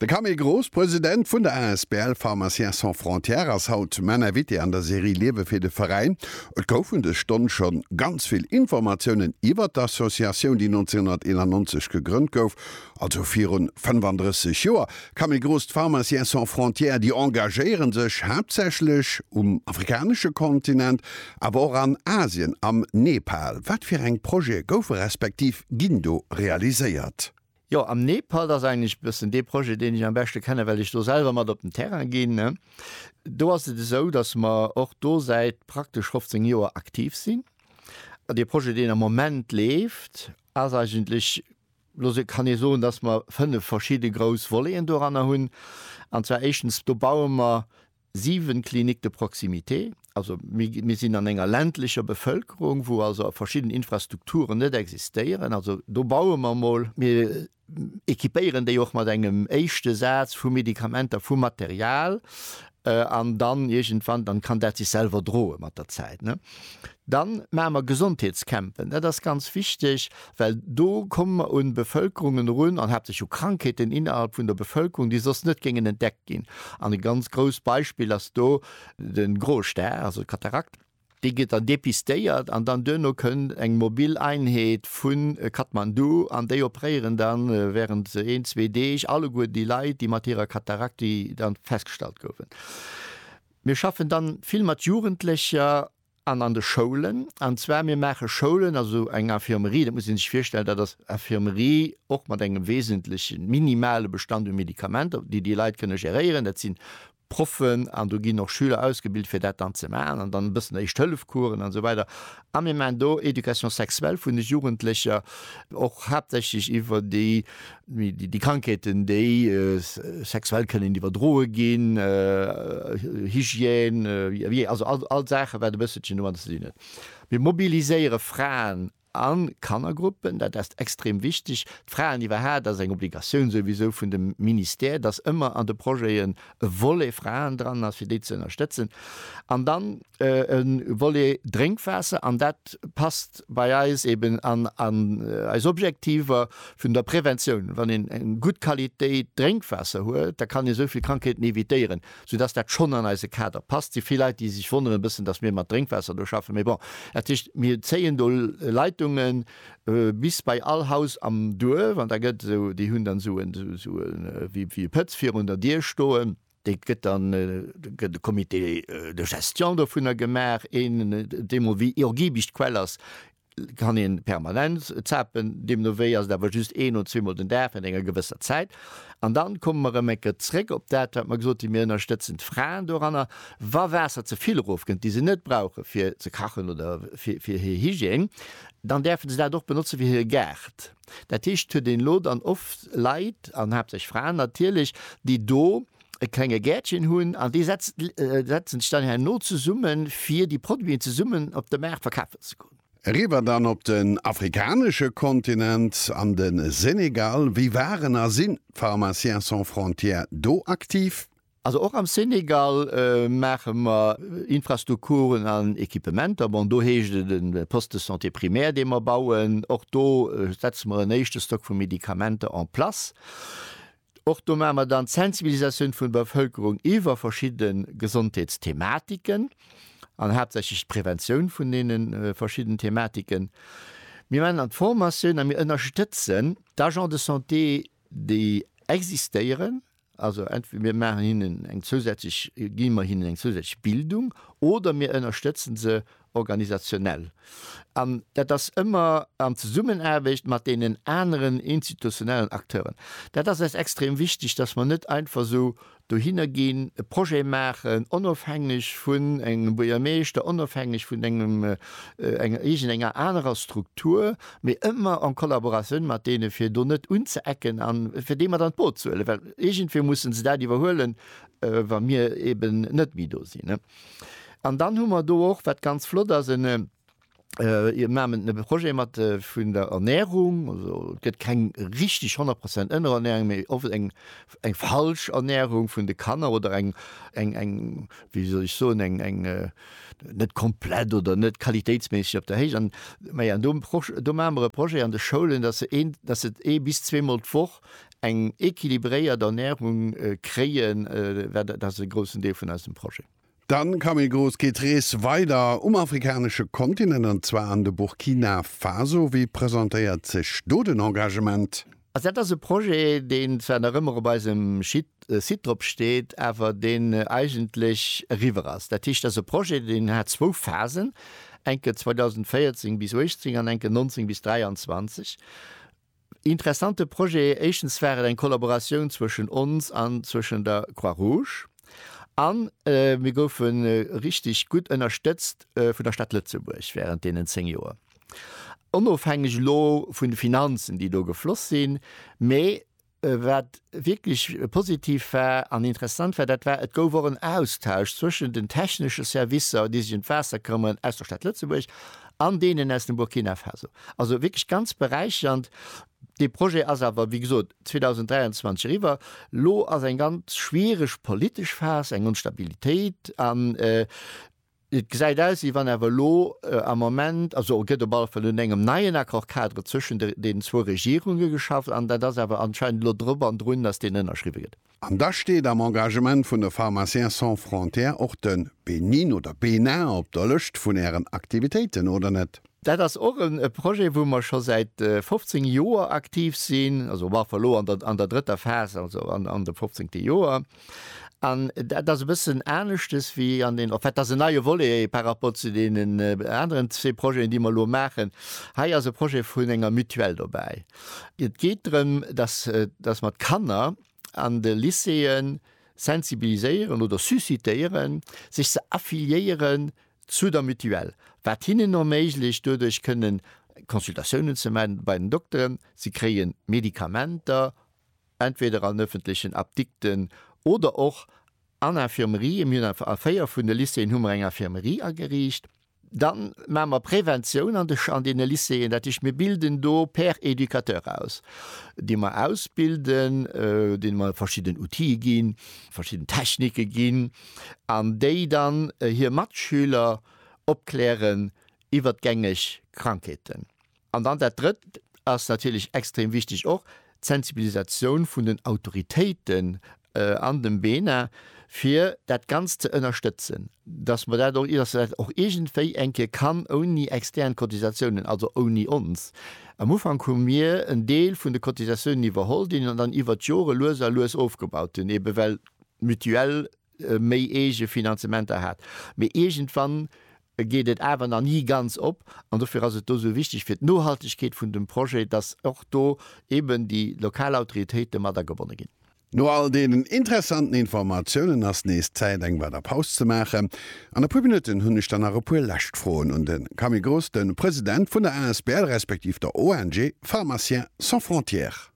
De Camille Gross, President vun der asbl Pharmaciens sans frontières, ass haut main Invité an der Serie Liewe fir de Veräin. Et gouf un dës Stonn scho ganz vill Informatiounen iwwert d'Associatioun, déi 1991 gegrënnt gouf, also virun 35 Joer. Camille Gross, D'Pharmaciens sans frontières, déi engagéiere sech haaptsächlech um afrikanesche Kontinent, Awer och an Asien, am Nepal. Wat fir eng Projete goufe respektiv ginn do realiséiert? Jo, am Nepal, dat ass eigentlech e bëssen dee Projet, deen ech am beschte kennen, well ech do selwer mat op den Terrain ginn. Do ass et esou, datt mer och do säit praktesch 15 Joer aktiv sinn. An dee Projet, deen am Moment leeft, ass eigentlech, lo kann ee soen, datt mer fënnef verschidde grouss Voleten doranner hunn. An zwar éischtens, do baue mer 7 cliniques de proximité, also mir sinn an enger ländlecher Bevölkerung, wou also verschidden Infrastrukturen net existéieren, also do baue mer emol, mir équipéieren déi och mat engem éischte Saz vu Medikamenter, vu Material, an dann iergendwann, dann kann dat sech selwer droe mat der Zäit. Dann maache mer Gesondheetscampen. Dat ass ganz wichteg, well do komme mer un d'Bevölkerungen erun an haaptsächlech u Krankheeten innerhalb vun der Bevölkerung, déi soss net géingen entdeckt ginn. An e ganz grousst Beispill ass do de Groe Stär, also d'Katarakt. Déi gëtt dann depistéiert an dann duerno kënnt eng mobil Einheet vu Kathmandu an déi opréieren dann während een, zwee Deeg alleguer déi Leit, déi mat hirer Katarakt, déi dann festgestallt goufen. Mir schaffen dann vill mat Jugendlecher. An an de Schoulen. An zwar, mir maache Schoulen, also eng Infirmerie, dat muss ee sech virstellen, dat ass Infirmerie och mat engem wesentleche minimale Bestand u Medikamenter, déi déi Leit kënne geréieren. Dat si Proffen an do ginn och Schüler ausgebilt, fir dat dann ze maachen. An dann e bëssen Éischt-Hëllef-Coursen an esou weider. A mir maachen do Éducation sexuelle vun de Jugendlecher, och haaptsächlech iwwer déi Déi Krankheeten, déi sexuell kënnen iwwerdroe ginn, Hygiène, Vih, also all d'Saachen, wat e bësselchen domadder ze dinn huet. Mir mobiliséiere Fraen a Kannergruppen, dat ass extrem wichteg. D'Fraeniwwerhaaut ass eng Obligatioun souwisou vun dem Ministère, dass ëmmer an de Projete e Volet Fraen dran ass, fir déi ze ënnerstëtzen, an dann e Volet Drénkwaasser, an dat passt bei eis eben an eis Objektiver vun der Preventioun. Wann een eng gutt Qualitéit Drénkwaasser huet, da kann ee esou vill Krankheeten evitéieren, soudass dat schonn an eise Kader passt. Et si vill Leit, déi sech wonnere e bëssen, dass mir mat Drénkwaasser do schaffen, mee bon, dat heescht, mir zéien do Leitungen, Bis bei all Haus am Duerf, an da gëtt esou, déi hunn dann esou en, esou e, wéi e Pëtz virun der Dier stoen. Dee gëtt dann, da gëtt e Comité de gestion dovunner gemaach, een, deemol wéi iergiebig d'Quell ass, kann ee permanent zapen, deemno wéi ass et awer just een oder zweemol den Dag während enger gewësser Zäit. An dann komme mer erëm eng Kéier zrëck op dat, wat mer gesot hunn, mir ënnerstëtzen d'Fraen doranner, wa Waasser ze vill erofkënnt, déi se net brauchen, fir ze kachen oder fir hir Hygiène. Dann däerfen se dat och benotze fir hire Gaart. Dat heescht, et huet een elo dann oft Leit, an haaptsächlech Fraen natierlech, déi do e klenge Gäertchen hunn an déi setzen sech dann herno zesumme fir déi Produiten zesummen op de Maart verkafen ze goen. Eriwwer dann op den afrikanesche Kontinent, an de Senegal. Wéi waren a sinn d'Pharmaciens sans frontières do aktiv? Also och am Senegal maache mer Infrastrukturen an Equipementer. Bon, do heescht et en Poste de santé primaire, dee mer bauen. Och do setze mer en éischte Stock vu Medikamenter en place. Och do maache mer dann d'Sensibilisatioun vun der Bevölkerung iwwer verschidde Gesondheetsthematiken an haaptsächlech d'Präventioun vun deene verschidden Thematiken. Mir maachen dann d'Formatioun a mir ënnerstëtzen d'Agents de santé, déi existéieren Also entweder mir maachen hinnen eng zousätzlech, gi mer hinnen eng zousätzlech Bildung oder mir ënnerstëtzen se organisationell. An dat ass ëmmer an Zesummenaarbecht mat deenen aneren institutionellen Acteuren. Dat ass eis extrem wichteg, dass mer net einfach esou dohinner ginn, e Projet maachen, onofhängeg vun engem Buergermeeschter, onofhängeg vun engem, enger iergendenger anerer Struktur, mee ëmmer en Collaboratioun mat deene fir do net unzeecken a fir déi mat an d'Boot ze huelen, well iergendwéi mussen se dat iwwerhuelen, wa mir eben net méi do sinn. An dann hu mer do och, wat ganz flott ass, en, mir maachen e Projet mat vun der Ernährung, also et gëtt keng richtig 100 Prozent Ënnerernährung, mee oft eng eng falsch Ernährung vun de Kanner oder eng, eng, eng, wéi soll ech soen, eng, eng net komplett oder net qualitéitsméisseg op der Héicht. An, ma ja, do Proch, do maache mer e Projet an de Schoulen, dass se een, dass se ee bis zweemol d'Woch eng équilibréiert Ernährung kréien, dat ass e groussen Deel vun eisem Projet. Dann ka méi grouss geet d'Rees weider um afrikanesche Kontinent, an zwar an de Burkina Faso. Wéi presentéiert sech do den Engagement? Also dat ass e Projet, deen zwar nach ëmmer op eisem Site drop steet, awer deen eigentlech eriwwer ass. Dat heescht, dat ass e Projet, deen hat zwou Phasen, enke 2014 bis 2018 an enke 2019 bis 2023. Interessante Projet, éischtens war et eng Kollaboratioun zwëschen ons an zwëschen der Croix Rouge a mir goufe richtig gutt ënnerstëtzt vun der Stad Lëtzebuerg während deenen 10 Joer, onofhängeg elo vun de Finanzen, déi do gefloss sinn. Mä wat wierklech positiv war an interessant war, dat war, et gouf och en Austausch zwëschen den technesche Servicer, déi sech ëm d'Waasser këmmern, aus der Stad Lëtzebuerg an deenen aus dem Burkina Faso. Also wierklech ganz beräichernd. Dee Projet ass awer, wéi gesot, 2023 eriwwer. Elo ass eng ganz schwiereg politesch Phas, eng Onstabilitéit an et gesäit aus, wéi wann awer elo am Moment, also et gëtt op alle Fall un engem neien Accord-cadre zwëschen deenen zwou Regierunge geschafft an dat ass awer anscheinend elo drop an drun, datt deen ënnerschriwwe gëtt. An da steet am Engagement vun de Pharmaciens sans frontières och de Benin oder Bénin op der Lëscht vun Ären Aktivitéiten, oder net? Dat ass och e Projet, wou mer scho säit 15 Joer aktiv sinn, also mer awer elo an der drëtter Phas, also an de fofzéngte Joer. An dat ass e bëssen aneschtes wéi an den, en fait, dat ass en neie Volet par rapport zu deenen aneren zwee Projeten, déi mer elo maachen. Hei ass e Projet vun enger Mutuelle dobäi. Et geet drëm, dass, dass mer d'Kanner an de Lycéeë sensibiliséieren oder suscitéieren, sech ze affiliéieren zu der Mutuelle, wat hinnen erméiglecht, doduerch kënnen Consultatiounen ze maachen bei den Dokteren, si kréie Medikamenter entweder an öffentlechen Apdikten oder och an Infirmerië. Mir hunn a véier vun de Lycéeën hu mer eng Infirmerie ageriicht. Da maache mer Preventioun an de, an deene Lycéeën. Dat heescht, mir bilden do Pères éducateurs aus, déi mer ausbilden, deene mer verschidden Outile ginn, verschidden Technike ginn an déi dann hir Matschüler opklären iwwert gängeg Krankheeten. An dann dat Drëtt ass natierlech extrem wichtig och, d'Sensibilisatioun vun den Autoritéiten an dem BENA, fir dat Ganzt ze ënnerstëtzen, dass mer dat och, dass dat och iergendwéi eng Kéier kann ouni extern Cotisatiounen, also ouni ons. Am Ufank hu mir en Deel vun de Cotisatiounen iwwerholl, deen mer dann iwwert d'Jore lues a lues ofgebaut hunn, eebe well d'Mutuelle méi eege Finanzementer hat. Mee iergendwann geet et awer nach ni ganz op an dofir ass et do esou wichteg fir d'Nohaltegkeet vun dem Projet, dass och do eben déi lokal Autoritéite mat agebonne ginn. No all deenen interessanten Informatiounen ass nees Zäit eng weider Paus ze maachen. An e puer Minutten hunn ech dann nach e puer lescht Froen un de Camille Gross, de President vun der asbl respektiv der ONG Pharmaciens sans frontières.